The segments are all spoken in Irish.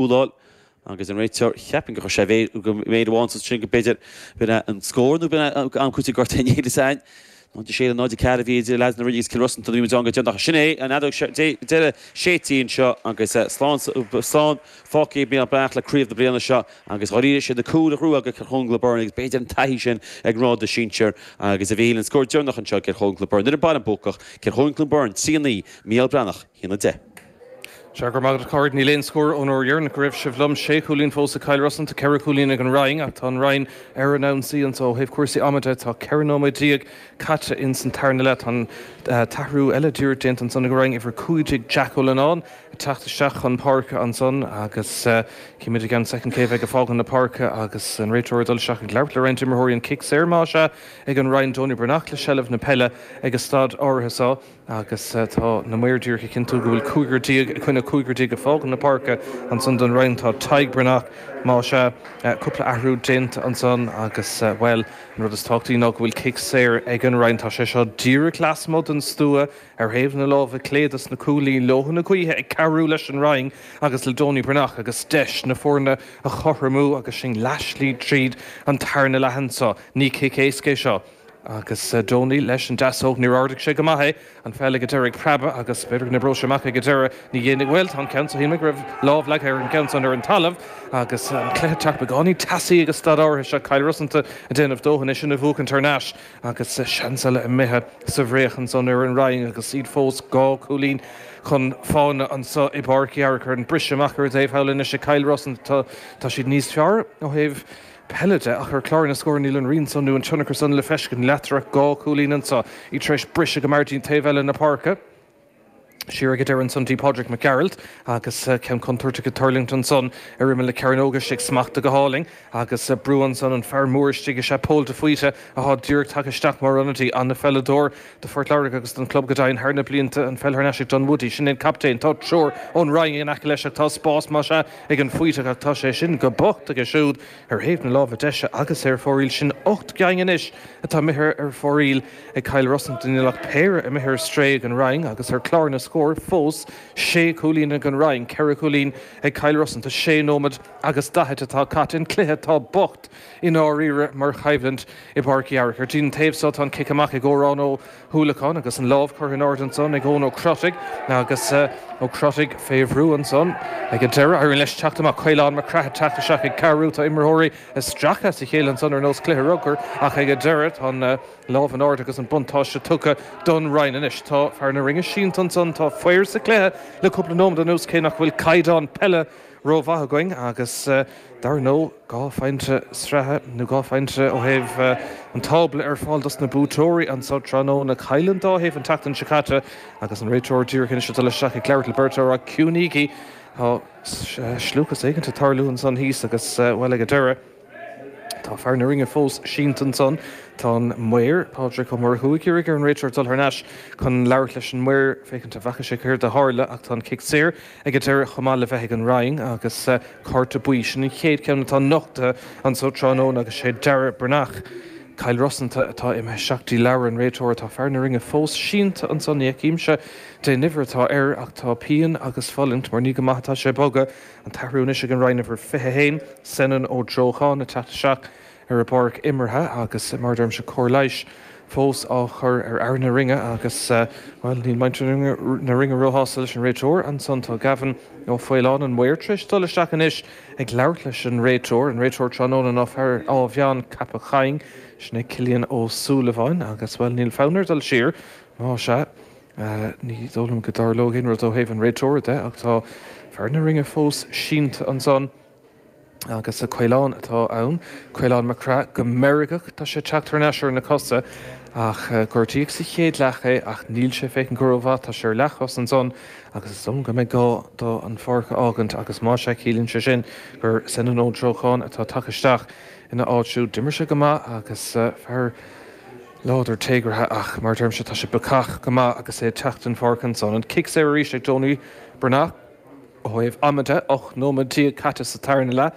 Úlláil, agus an réiteoir, cheapfainn gur chuir sé mhéir, gur chuir méir amháin sos sin go b'fhéidir, b'in é an scór, nó b'in é an am cúiteamh gorta in Éilis Eain, 0-6 le 0-4 a bhí idir leaids na Rinne agus Cill Rosanta nuair a bhí muid ann go deireanach. Sin é an fheadóg, seo deireadh, sé tinn seo agus slán, slán fágtha ag Mícheál Breathnach le craobh na bliana seo agus dháiríre sé na cúil a bhuaigh ag Cill Chonaill Clon Beirne agus b'fhéidir an taithí sin ag an ngrád sinsir agus a bhí le an scór deireanach anseo ag Cill Chonaill Clon Beirne. Nuair a mbíonn buacach, Cill Chonaill Clon Beirne, 3-9, Mícheál Breathnach. hAon 10. Sea, go raibh maith agat a Phádraig. Níl aon scór ón uair dheireanach go raibh sibh liom. Sé chúilín fós ag Cill Rosanta. Tá ceithre chúilín ag an Rinn ach tá an Rinn ar an ionsaí anso. Ó thaobh cúrsaí ama de, tá ceithre nóiméad déag caite ins an tarna leath. Tá an t-athrú eile díreach déanta ansan ag an Rinn. Uimhir 15 Jack Ó Lonáin ag teacht isteach chun páirce ansan agus cífimid i gceann soicind cé a bheidh ag fágaint na páirce agus an réiteoir ag dul isteach ag labhairt le roinnt imreoirí. An cic saor, más ea, ag an Rinn. Donie Breathnach le seilbh na peile ag an staid áirithe so. Agus tá na maoir díreach ag cinntiú go bhfuil cúigear déag i gcoinne cúigear déag ag fágáil na páirce. Ansan don Rinn tá Tadhg Breathnach, más ea. Cúpla athrú déanta ansan agus, bhuel, an rud is tábhachtaí ná go bhfuil cic saor ag an Rinn. Tá sé seo díreach lasmuigh den stua, ar thaobh na láimhe clé dos na cúilín. Leoithne gaoithe ag cabhrú leis an Rinn agus le Donie Breathnach agus deis na foirne a chothromú agus sinn leathslí tríd an tarna leath anso. Ní cic éasca é seo. Agus Donie leis an deasóg, níor ardaigh sé go maith é. An pheil ag an deireadh ag preabadh agus b'fhéidir go n-oibreodh sé amach ag an deireadh. Ní dhéanfaidh, bhuel, tá an ceann seo, shíl mé go raibh lámh leagtha ar an gceann san ar an talamh agus an cluiche ag teacht beagáinín teasaí ag an staid áirithe seo, Cill Rosanta ag déanamh dóthain í sin a bhuachaint thar n-ais agus seans eile imithe sa bhfraoch ansan ar an Rinn agus iad fós dhá chúilín chun fána anso i bPáirc Uí Fhearchair. Briseadh amach ar thaobh thall anois ag Cill Rosanta, tá siad níos fearr ó thaobh peile de, ach ar chlár na scór níl an rian san nó an tionchar san le feiscint, leatrom, dhá chúilín ansan, iad tar éis briseadh go mear dtí'n taobh eile na páirce, siar ag an deireadh ansan dtí Pádraic Mac Gearailt agus ceann contúirteach ag tuirlingt ansan ar imeall na cearnóige, istigh smachtaithe go hálainn agus brú ansan, an fear mór istigh is ea Pól de Faoite athá díreach tagtha isteach mar ionadaí, an-pheileadóir. do Phort Láirge agus don chlub go deimhin thar na blianta, an pheil thar n-ais ag Dunwoody, sin é an captaen. Tá triúr ón Rinn in aice leis ach tá spás más ea ag an Faoiteach ach tá sé sin go bocht aige siúd ar thaobh na láimhe deise agus é ar fóraoil. Sin ocht gceaing anois atá imithe ar fóraoil ag Cill Rosanta, níl ach péire imithe ar strae ag an Rinn agus ar chlár na scór fós sé chúilín ag an Rinn, ceithre chúilín ag Cill Rosanta. Sé nóiméad agus daichid atá caite sa chluiche. Tá bocht. I ndáiríre, mar choimhlint i bPáirc Uí Fhearchair, den taobh thall tá an cic amach ag Órán Ó hUallacháin agus an lámh curtha in airde ansan ag Eoin Ó Crotaigh agus Ó Crotaigh fé bhrú ansan ag an deireadh. Éiríonn leis teacht amach, Caolán Mac Craith ag teacht isteach ag cabhrú. Tá imreoirí isteach as a chéile ansan ar nós cluiche rugbair ach ag an deireadh tá an lámh in airde agus an buntáiste tugtha don Rinn. Anois tá fear na Rinne sínte ansan. Tá faobhar sa chluiche le cúpla nóiméad anuas cé nach bhfuil caighdeán peile rómhaith againn agus dar ndó, Dhá phointe sraithe, nó dhá phointe ó thaobh an tábla, ar fáil dos na buaiteoirí anseo tráthnóna. Chaill an dá thaobh an tseachtain seo caite agus an réiteoir díreach anois ag dul isteach ag labhairt le beirt mhaor cúinígí, tá scliúchas éigint ag tarlú ansan thíos agus, bhuel, ag an deireadh, tá fear na Rinne fós sínte ansan. Tá an maor, Pádraig Ó Murchú, ag iarraidh ar an réiteoir dul thar n-ais chun labhairt leis an maor féachaint an bhfaca sé céard a tharla ach tá an cic saor. Ag an deireadh, chomh maith le bheith ag an Rinn agus cárta buí, sin an chéad cheann atá nochtaithe anso tráthnóna agus sé Darragh Breathnach, Cill Rosanta, atá imithe isteach dtí leabhar an réiteora. Tá fear na Rinne fós sínte anso. Ní fheicimse dén uimhir atá air ach tá pian agus fulaingt mar ní go maith atá sé ag bogadh. An t-athrú anois ag an Rinn, uimhir 21, Senan Ó Drochán, ag teacht isteach. ar an bpáirc imeartha agus, mar a deirimse, cóir leighis fós á chur ar fhear na Rinne agus, bhuel, níl muintir na Rinne róshásta leis an réiteoir. Ansan tá Gavin Ó Faoláin, an maor, tar éis dul isteach anois ag labhairt leis an réiteoir, an réiteoir tráthnóna ná fear Áth Mheáin Ceapach Choinn, sin é Cillian Ó Súilleabháin agus, bhuel, níl fonn air dul siar, má sea, ní dóigh liom go dtarlóidh aon rud ó thaobh an réiteora de ach tá fear na Rinne fós sínte ansan. Agus Caolán atá ann, Caolán Mac Craith, go meirgeach tá sé ag teacht thar n-ais ar na cosa, ach gortaíodh sa chéad leath é, ach níl sé ag féachaint go rómhaith, tá sé ar leathchos ansan, agus is dóigh go mbeidh gá do an pháirc a fhágaint, agus más ea ciallaíonn sé sin gur Senan Ó Drochán atá tagtha isteach ina áit. Siúd, d'imir sé go maith agus fear láidir téagartha, ach mar a deirimse, tá sé bacach go maith agus é ag teacht den pháirc ansan. An cic saor arís ag Tony Bernard. Ó thaobh ama de, 18 nóiméad caite sa tarna leath,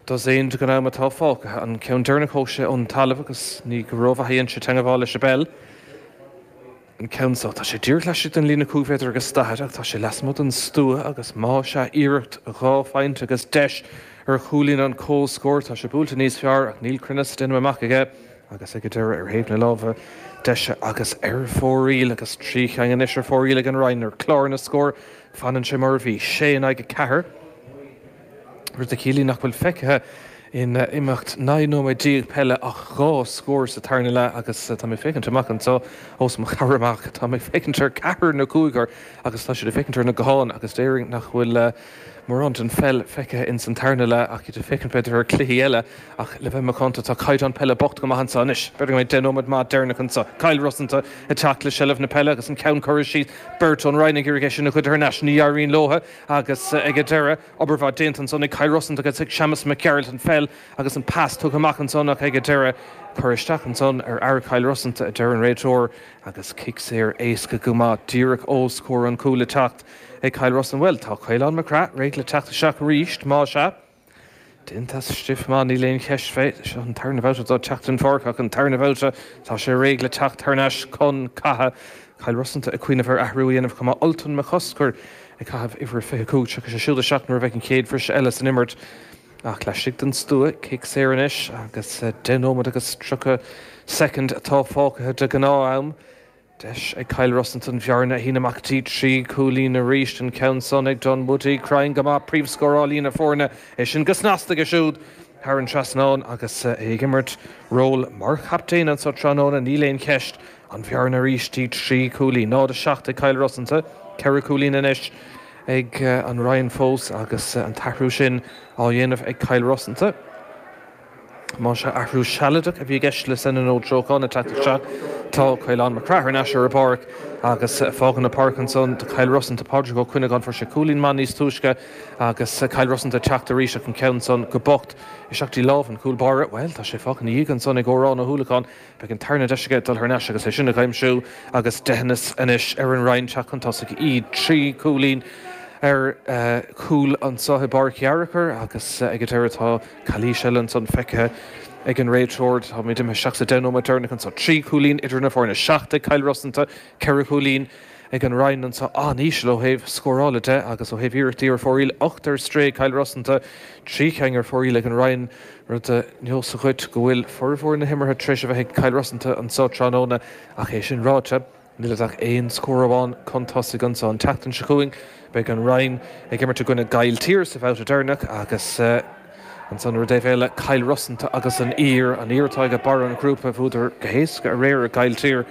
dosaen den am atá fágtha, an ceann deireanach thóg sé ón talamh agus ní go rómhaith a dhein sé teangabháil leis an bpeil. An ceann seo, tá sé díreach laistigh den líne cúig mhéadar agus daichead ach tá sé lasmuigh den stua agus más ea, iarracht dhá phointe agus deis ar Chuilín an comhscór, tá sé buailte níos fearr ach níl cruinneas in aon chor aige agus ag an deireadh, ar thaobh na láimhe deise agus ar fóraoil, agus trí cheann anois ar fóraoil ag an Rinn, ar chlár na scór. Fanann sé mar a bhí, 6 in aghaidh 4, rud a chiallaíonn nach bhfuil feicthe in imeacht 19 nóiméad peile ach dhá scór sa tarna leath agus tá mé ag féachaint amach anseo os mo chomhair amach, tá mé ag féachaint ar cheathrar nó cúigear agus tá siad ag féachaint ar na gutháin agus déarfainn nach bhfuil mórán den pheil feicthe ins an tarna leath ach iad ag féachaint b'fhéidir ar chluichí eile. Ach, le bheith macánta, tá caighdeán peile bocht go maith anso anois. B'fhéidir go mbeidh deich nóiméad maith deireanach anso. Cill Rosanta ag teacht le seilbh na peile agus an ceann curtha síos, beirt ón Rinn ag iarraidh é sin a ghoid thar n-ais. Ní éiríonn leo agus, ag an deireadh, obair mhaith déanta ansan ag Cill Rosanta agus Séamus Mac Gearailt an pheil agus an pas tugtha amach ansan ach, ag an deireadh, cur isteach ansan ar fhear Chill Rosanta, a deir an réiteoir agus cic saor éasca go maith díreach os comhair an chúil le teacht ag Cill Rosanta. Bhuel, tá Caolán Mac Craith réidh le teacht isteach arís, más ea. Deontas stiff, maith, níl aon cheist fé. Seo an tarna bhabhta dó teacht den pháirc ach an tarna bhabhta tá sé réidh le teacht thar n-ais chun catha. Cill Rosanta ag cuimhneamh ar athrú a dhéanamh chomh maith, Ultan McCusker ag caitheamh uimhir a 25. Tiocfaidh sé siúd isteach nuair a bheidh an chéad bhriseadh eile san imirt ach laistigh den stua. Cic saor anois agus deich nóiméad agus tríocha soicind atá fágtha de ghnáth-am. Deis ag Cill Rosanta an bhearna a shíneadh amach dtí trí chúilín arís an ceann san ag Dunwoody. Cruinn go maith príomhscóráilí na foirne é sin go snasta aige siúd thar an trasnán agus é ag imirt ról mar chaptaen anso tráthnóna. Níl aon cheist, an bhearna arís dtí trí chúilín. 0-7 ag Cill Rosanta, ceithre chúilín anois ag an Rinn fós agus an t-athrú sin á dhéanamh ag Cill Rosanta. Más ea, athrú sealadach a bhí i gceist le Senadh Noel Treocán teacht isteach anso. Tá Caolán Mac Craith ar ais ar an bpáirc agus fágaint na páirce ansan do Chill Rosanta. Pádraig Ó Cuinneagáin, fuair sé cúilín maith níos túisce agus Cill Rosanta ag teacht arís ach an ceann san go bocht isteach dtí lámh an chúl báire. Bhuel, tá sé fágtha ina dhiaidh ansan ag Odhrán Ó hUallacháin. Beidh an tarna deis aige dul thar n-ais agus é sin a aimsiú agus deitheanas anois ar an Rinn teacht chun tosaigh. Iad trí chúilín ar chúl anso i bPáirc Fhearchair agus ag an deireadh tá. Calaois eile ansan feicthe ag an réiteoir. Táimid imithe isteach sa deich nóiméad deireanach anso. Trí chúilín idir na foirne, seacht ag Cill Rosanta, ceithre chúilín ag an Rinn anso, an-íseal ó thaobh scórála de, agus ó thaobh iarrachtaí ar fóraoil, ocht ar strae ag Cill Rosanta, trí cheann ar fóraoil ag an Rinn, rud a neosfaidh dhuit go bhfuil formhór na himeartha tar éis a bheith ag Cill Rosanta anso tráthnóna, ach é sin ráite, Níl siad ach aon scór amháin chun tosaigh anso. An tseachtain seo chugainn beidh an Rinn ag imirt i gcoinne Gaill Tír sa bhabhta deireanach agus ansan ar an taobh eile Cill Rosanta agus an Uidhir. An Uidhir atá ag barr an ghrúpa. Bhuadar go héasca aréir ar Gaill Tír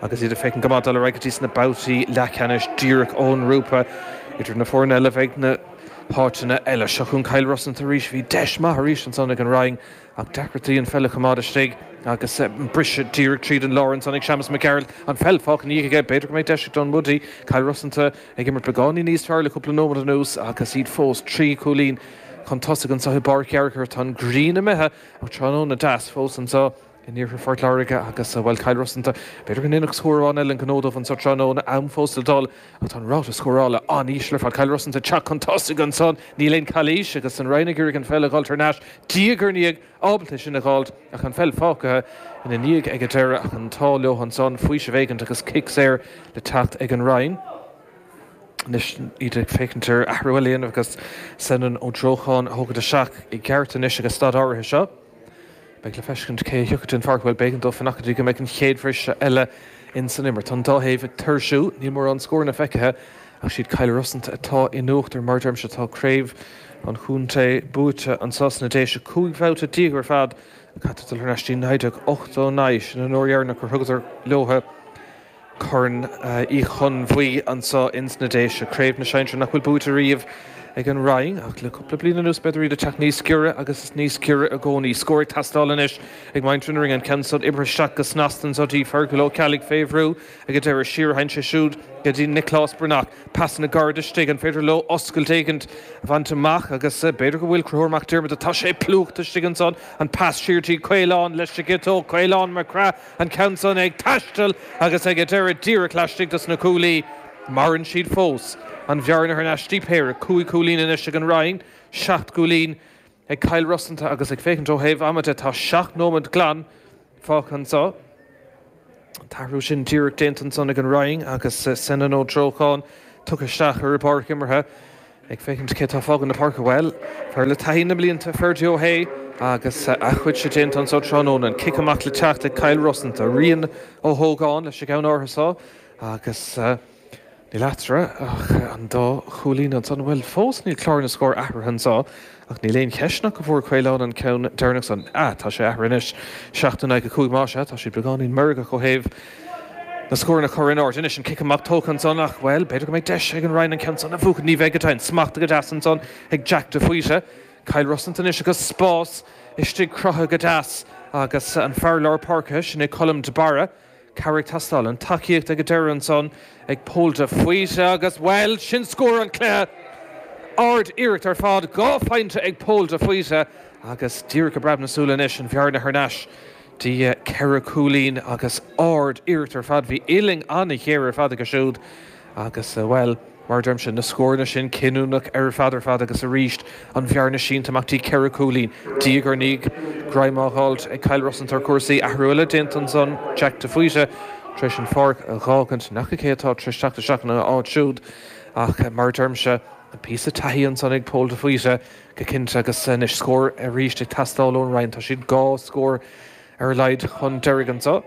agus iad ag féachaint go maith dul ar aghaidh dtí sna babhtaí leathcheannais díreach ón ngrúpa. Idir na foirne eile a bheidh na háiteanna eile. Seo chugainn Cill Rosanta arís. Bhí deis maith arís ansan ag an Rinn. Ach deacrachtaí an pheil a choimeád istigh agus briseadh díreach tríd an lár ansan ag Séamas Mac Gearailt, an pheil fágtha ina dhiaidh aige. B'fhéidir go mbeidh deis ag Dunwoody, Cill Rosanta, ag imirt beagáinín níos fearr le cúpla nóiméad anuas agus iad fós trí chúilín chun tosaigh anso i bPáirc Fhearchair. Tá an ghrian imithe ach tráthnóna deas fós anso in iarthar Phort Láirge agus, bhuel, Cill Rosanta, b'fhéidir go ndéanfadh scór amháin eile an gnó dóibh anso tráthnóna. Am fós le dul. Ach tá an ráta scórála an-íseal ar fad. Cill Rosanta ag teacht chun tosaigh ansan, níl aon chalaois agus an Rinn ag iarraidh an pheil a dh'fháilt thar n-ais diaidh ar ndiaidh, ábalta é sin a dh'fháilt ach an pheil fágtha ina ndiaidh ag an deireadh ach an t-ádh leo ansan, faoiseamh éigint agus cic saor le teacht ag an Rinn. Anois iad ag féachaint ar athrú eile a dhéanamh agus Senan Ó Drócháin a thógaint isteach i gceart anois ag an staid áirithe seo. Beidh le feiscint cé a thiocfaidh den pháirc. Bhuel, b'éigean dó fanacht dtí go mbeidh an chéad bhriseadh eile ins an imirt. Tá an dá thaobh ag tuirsiú, níl mórán scóranna feicthe ach 'siad Cill Rosanta atá in uachtar. Mar a deirimse, tá craobh an chontae buaite anso sna Déise cúig bhabhta déag ar fad. Caithfear dul thar n-ais dtí 1989, sin an uair dheireanach gur thugadar leotha. Corn Uí Chonbhuí anso ins na Déise, craobh na sinsear nach bhfuil buaite ariamh ag an Rinn, ach le cupla bliain anuas b'fhéidir iad a' teacht níos giorra agus níos giorra i gcónaí. Scór ag teastáil anois ag muintir na Rinne, an ceann súd oibrithe isteach go snasta anso dtí Fearghal Ó Ceallaigh fé bhrú ag an deireadh siar, sheinn sé siúd go dtí Nioclás Breathnach. Pasanna gairid istigh, an féidir leo oscailt éigint a bhaint amach agus b'fhéidir go bhfuil. Conchúr Mac Diarmada, tá sé plúchta istigh ansan, an pas siar dtí Caolán, leis an gciotóg Caolán Mac Craith, an ceann san ag taisteal agus ag a deireadh díreach laistigh dos na cuaillí. Maireann siad fós. An bhearna thar n-ais dtí péire cúig chúilín anois ag an Rinn, seacht gcúilín ag Cill Rosanta agus ag féachaint ó thaobh ama de tá seacht nóimead glan fágtha anso. An t-athrú sin díreach déanta ansan ag an Rinn agus Senan Ó Drócháin tugtha isteach ar a bpáirc imeartha. Ag féachaint cé tá ag fágaint na páirce, bhuel, fear le taithí na mblianta, Ferdia Ó hAodha, agus a chuidse déanta anso tráthnóna. An cic amach le teacht ag Cill Rosanta, Rian Ó hÓgáin leis an gceann áirithe so, agus níl eatarthu ach an dá chúilín anso, nó bhuel, fós níl clár na scór athraithe anso. Ach níl aon cheist ach go bhfuair Caolán an ceann deireanach san. Ah, tá sé athraithe anois. Seacht in aghaidh a cúig más ea. Tá siad beagáinín meirgeach ó thaobh na scóranna a chur in airde anois. An cic amach tógtha ansan ach, bhuel, b'fhéidir go mbeidh deis ag an Rinn an ceann san a bhuachaint. Ní bheidh, go deimhin. Smachtaithe go deas ansan ag Jack de Faoite. Cill Rosanta anois agus spás istigh cruthaithe go deas agus an fear lár páirce, sin é Colm de Barra. Cabhair ag teastáil, an tacaíocht ag a deireadh ansan ag Pól de Faoite agus, bhuel, sin scór an chluiche! Ard iarracht ar fad, dhá phointe ag Pól de Faoite agus díreach i bpreab na súile anois an bhearna thar n-ais dtí ceithre chúilín agus ard iarracht ar fad. Bhí uillinn an-ghéar ar fad aige siúd. Agus, bhuel, mar a deirimse, na scóranna sin, cinniúnach ar fad ar fad agus arís an bhearna sínte amach, dtí ceithre chúilín, diaidh ar ndiaidh, greim á dh'fháilt ag Cill Rosanta ar chúrsaí, athrú eile déanta ansan, Jack de Faoite tar éis an pháirc a dh'fhágaint, ní fhaca cé atá tar éis teacht isteach ina áit siúd ach, mar a deirimse, píosa taithí ansan ag Pól de Faoite, go cinnte, agus anois scór arís ag teastáil ón Rinn, tá siad dhá scór ar a laghad chun deiridh anso.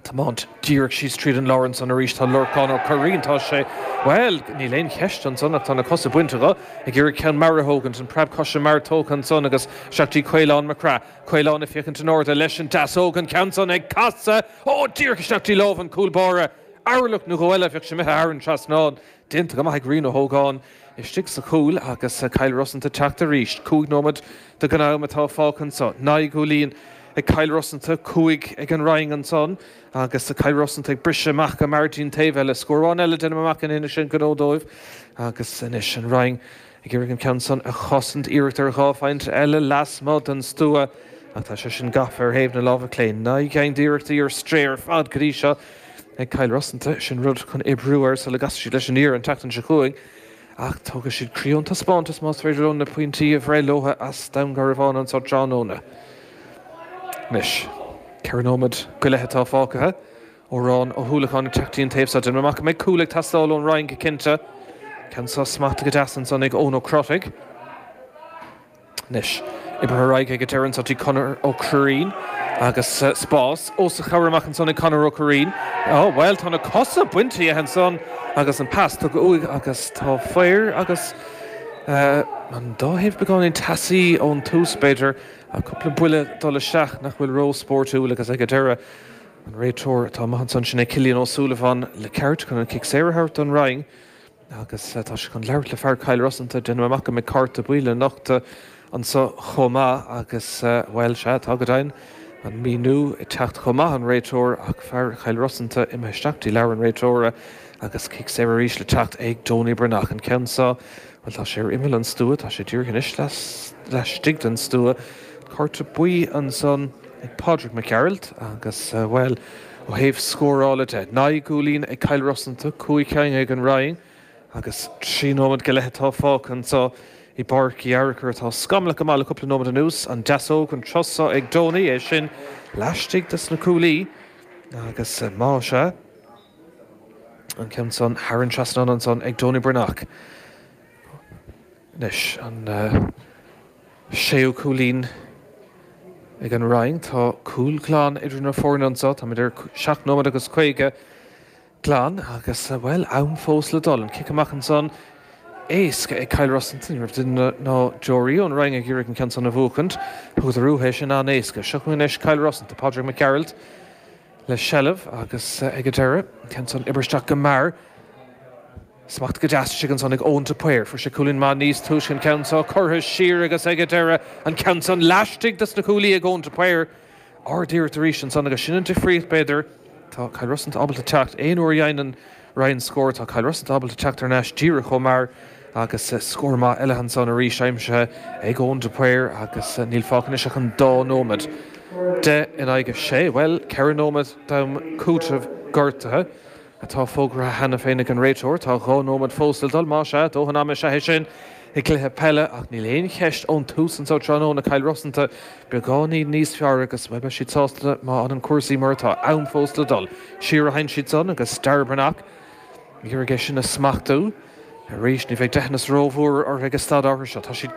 tiomáint díreach síos tríd an lár ansan arís. Tá Lorcán Ó Curraoin, tá sé, bhuel, níl aon cheist ansan ach tá na cosa bainte dho, ag iarraidh ceann mear a thógaint, an preab coise mear tógtha ansan agus isteach dtí Caolán Mac Craith. Caolán ag féachaint in airde leis an deasóg, an ceann san ag casadh, ó, díreach isteach dtí lámh an chúl báire. Orlach nó dhó eile, bheadh sé imithe thar an trasnán. déanta go maith ag Rian Ó hÓgáin istigh sa chúl agus Cill Rosanta teacht arís. Cúig nóiméad de ghnáth-am atá fágtha anso. Naoi gcúilín ag Cill Rosanta, cúig ag an Rinn ansan agus Cill Rosanta ag briseadh amach go mear dtí'n taobh eile. Scór amháin eile déanaim amach go ndéanfaidh sin gnó dóibh agus anois an Rinn. Ag iarraidh an ceann san a chosaint, iarracht ar dhá phointe eile lasmuigh den stua, ach tá sé sin gafa ar thaobh na láimhe clé. Naoi gceann d'iarrachtaí ar strae ar fad go dtí seo ag Cill Rosanta, sin rud chun oibriú air sula gcasfaidh siad leis an Uidhir an tseachtain seo chugainn, ach tógfaidh siad croí ón taispeántas más féidir leo na pointí a bhreith leo as Dún Garbhán anseo tráthnóna. Anois, ceithre nóiméad go leith atá fágtha. Odhrán Ó hUallacháin ag teacht dtí an taobh seo den mamach. Beidh cúl ag teastáil ón Rinn go cinnte. Ceann san smachta go deas ansan ag Eoin Ó Crotaigh. Anois, oibrithe ar aghaidh ag an deireadh anso dtí Conor Ó Cuirrín agus spás os a chomhair amach ansan ag Conor Ó Cuirrín. Ó, bhuel, tá na cosa bainte dhe ansan agus an pas tugtha uaidh agus tá fair agus, eh, an dá thaobh beagáinín teasaí ón tús, b'fhéidir, ach cúpla buille ag dul isteach nach bhfuil ró-spóirtiúil agus ag an deireadh, An réiteoir atá amuigh ansan, sin é Cillian Ó Súilleabháin le ceart chun an cic saor a thabhairt don Rinn agus tá sé chun labhairt le fear Cill Rosanta, déanaim amach go mbeidh cárta buí le nochtadh anso chomh maith agus, bhuel, sea, tá go deimhin, an míniú ag teacht chomh maith ón réiteoir ach fear Chill Rosanta imithe isteach dtí leabhar an réiteora agus cic saor arís le teacht ag Donie Breathnach. An ceann seo, bhuel, tá sé ar imeall an stua, tá sé díreach anois laistigh den stua. Cárta buí ansan. ag Pádraig Mac Gearailt agus, bhuel, ó thaobh scórála de, naoi gcúilín ag Cill Rosanta, cúig cinn ag an Rinn agus trí nóiméad go leith atá fágtha anseo i bPáirc Uí Fhearchair atá scamallaithe go maith le cúpla nóiméad anuas. An deasóg, an turas seo ag Donie, é sin laistigh de na cuaillí agus má sea, an ceann san thar an trasnán ansan ag Donie Breathnach. Anois, an. Séú cúilín ag an Rinn. Tá cúl glan idir na foirne anseo. Táimid ar sheacht nóiméad agus caoga glan agus, bhuel, am fós le dul. An cic amach ansan, éasca ag Cill Rosanta. Ní raibh duine ná deoraí ón Rinn ag iarraidh an ceann san a bhuachaint. Thugadar uathu é sin an-éasca. Seo chugainn anois Cill Rosanta, Pádraig Mac Gearailt le seilbh agus ag an deireadh, an ceann san, oibrithe isteach go mear. Smacht go deas istigh ansan ag Eoin de Paor. Fuair sé cúilín maith níos túisce an ceann seo curtha siar agus ag an deireadh an ceann san laistigh dos na cuaillí ag Eoin de Paor. Ard iarracht arís ansan agus sin an difríocht b'fhéidir. Tá Cill Rosanta ábalta teacht aon uair a dheineann an Rinn scór, tá Cill Rosanta ábalta teacht thar n-ais díreach chomh mear agus scór maith eile ansan arís aimsithe ag Eoin de Paor agus níl fágtha anois ach an dá nóimead. Deich in aghaidh a sé, bhuel, ceithre nóimead d'am cúitimh gortaithe. atá fógartha cheana féin ag an réiteoir. Tá dhá nóiméad fós le dul, más ea, dóthain ama is ea é sin i gcluiche peile, ach níl aon cheist ón tús anso tráthnóna, Cill Rosanta beagáinín níos fearr agus beidh siad sásta má fhanann cúrsaí mar atá. Am fós le dul. Siar a theann siad san agus Darragh Breathnach ag iarraidh é sin a smachtú arís. Ní bheidh deithneas rómhór orthu ag an staid áirithe seo. Tá siad